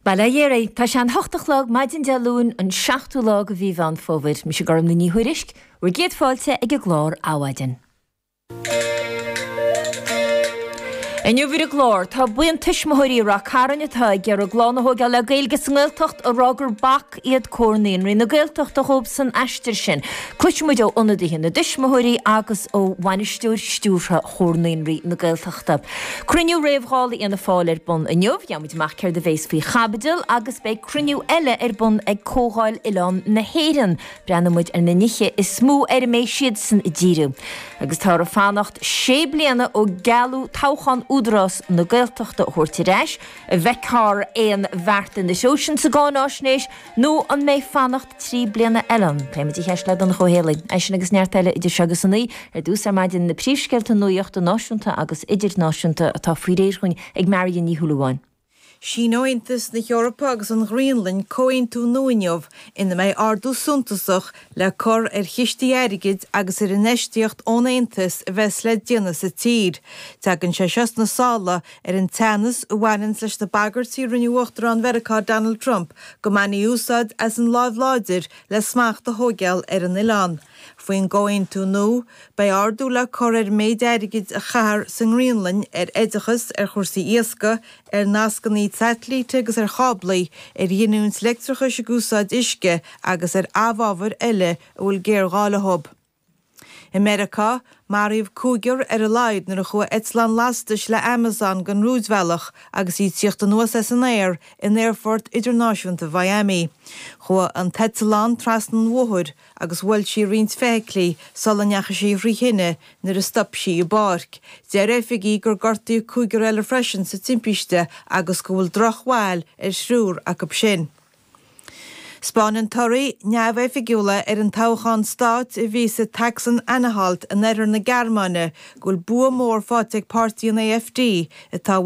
Bail ó Dhia oraibh. Tá sé an hocht a chlog, maidin Dé Luain, an seachtú lá de mhí Mheán Fómhair. Mise Gormfhlaith Ní Thuairisg, bhur gcéad fáilte ag an gclár Adhmhaidin. Inniu ar an gclár, tá buíon tuismitheoirí i Rath Cairn atá ag iarraidh a gclann a thóigeáil le Gaeilge sa nGaeltacht ag rá gur bac iad Comhar Naíonraí na Gaeltachta dhóib san aistear sin. Cloisfidh muid ó ionadaithe na dtuismitheoirí agus ó Bhainisteoir Stiúrtha Chomhar Naíonraí na Gaeltachta. Cruinniú réamh-Dháil ag Fianna Fáil ar bun inniu, gheobhaidh muid amach céard a bhéas faoi chaibidil agus beidh cruinniú eile ar bun ag Comhdháil Oileán na hÉireann. Breathnoidh muid ar na nithe is mó ar a mbeidh siadsan ag díriú agus táthar ag fanacht sé bliana ó gealladh toghchán Údarás na Gaeltachta a thabhairt ar ais. An bhfeicfear aon bheart ina thaobhsan sa gcáinaisnéis nó an mbeidh fanacht trí bliana eile ann? Pléifidh muid an cheist le Donncha Ó hÉallaithe. Eisean agus neart eile idir seo agus a naoi ar dtús ar maidin na príomhscéalta nuaíochta náisiúnta agus idirnáisiúnta atá faoi réir dhúinn ag Marion Ní Shúilleabháin. Síneoidh Aontas na hEorpa agus an Ghraonlainn comhaontú nua inniu ina mbeidh ardú suntasach le cur ar chistí airgid agus ar infheistíocht ón Aontas a bheas le déanamh sa tír. Tagann sé seo sna sála Ar an teannas a bhaineanns leis na bagairtí a rinne Uachtarán Mheiriceá Donald Trump go mbainfí úsáid as an láimh láidir le smacht a thóigeáil ar an oileán faoin gcomhaontú nua, beidh ardú le cur ar an méid airgid a chaithear sa nGraonlainn ar oideachas, ar chúrsaí iascaigh, ar nascannaí saitilíte agus ar cháblaí, ar ghiniúint leictreachais ag úsáid uisce agus ar amhábhair eile a bhfuil géarghá leo. I Meiriceá, maraíodh cúigear ar a laghad nuair a chuaigh eitleán lastais le Amazon den rúidbhealach agus í ag tíocht anuas as an aer in Aerfort Idirnáisiúnta Mhiami. Chuaigh an t-eitleán trasna an bhóthair agus bhuail sí roinnt feithiclí sula ndeachaigh sí thrí thine nuair a stop sí i bpáirc. Deir oifigigh gur gortaíodh cúigear eile freisin sa timpiste agus go bhfuil drochbhail ar thriúr acu sin. 'Spáineann torthaí neamhoifigiúla ar an toghchán stáit a bhí sa tSacsain-Anhalt in oirthear na Gearmáine go bhfuil bua mór faighte ag páirtí an AfD, atá i